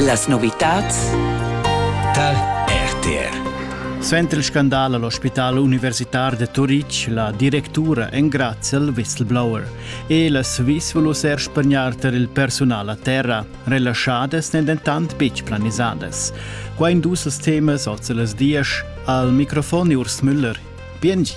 Las novitads tar RTR. Suenter il scandal all'ospital universitar de Turitg, la directura engrazia il whistleblower e las vis volus er spagnar tar il personal a terra. Relaschadas n'en dentant betg planisadas. Qua in dus temas oz las dias al microfon Urs Müller. Biengi.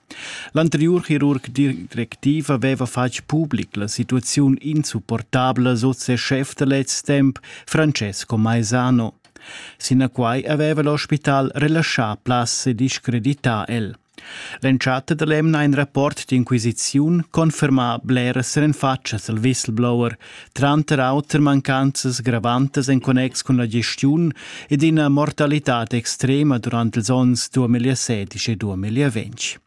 L'anteriur chirurg directiv haveva fatg public la situaziun insupportabla sut ses schef da lez temps, Francesco Maisano. Sinaquai haveva l'hospital relaschà plazs e discredità el. L'entschatta dall'emna ein rapport d'inquisiziun confermà bleras renfatschas al whistleblower, tranter auter mancanzas gravantas en connex cun la gestiun ed ina mortalitad extrema durant ils onns 2016 e 2020.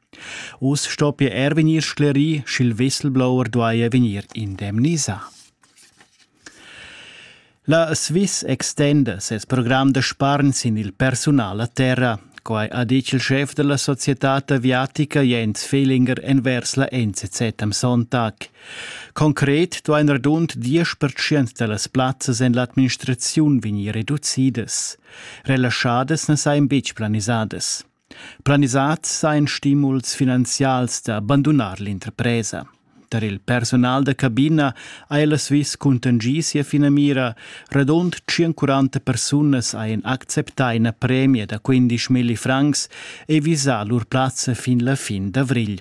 Us stoppia er vegnir sclerì, sch'il whistleblower duaja vegnir indemnisà. La Swiss extenda ses program da spargn sin il persunal a terra. Quai ha ditg il schef della società aviatica Jens Fehlinger envers la NZZ am Sonntag. Concret duain radund diesch pertschient da las plazzas en l'administraziun vegnir reducidas. Relaschadas na sajan betg planisadas. Planisads sajan stimuls finanzials da bandunar l'interpresa. Tar il personal da cabina haja la Swiss cuntengì sia finamira. Radund 140 persunas hajan acceptà ina premia da 15 milli francs e visà lur plazza fin la fin d'avrigl.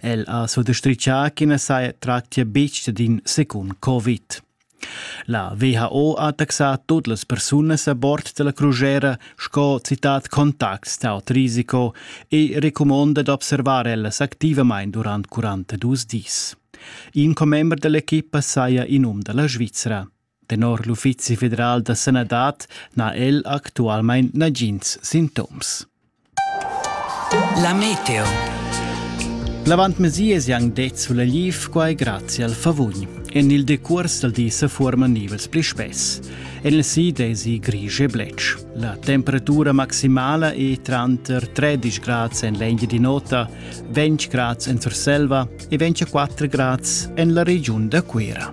El ha suttostrichà ch'i na saja tractia betg d'in secund Covid. La WHO ha taxà tut las persunas a bord da la crusera sco citat contacts d'aut risiko e recumonda d'observar ellas activamain durant 42 dis. In commember da l'equipa saja in um da la Svizra. Tenor l'Uffizi federal da sanadad n'ha el actualmain nagins sintoms. La meteo. L'avant mesias han det sulla liv quai grazie al favugn. En il decurs dal di se forman nivels pli spess. En il sid è si grisch e blec. La temperatura maximala è tranter 13 grad en l'engi di nota, 20 grad en Surselva e 24 grad en la regiun da Cuira.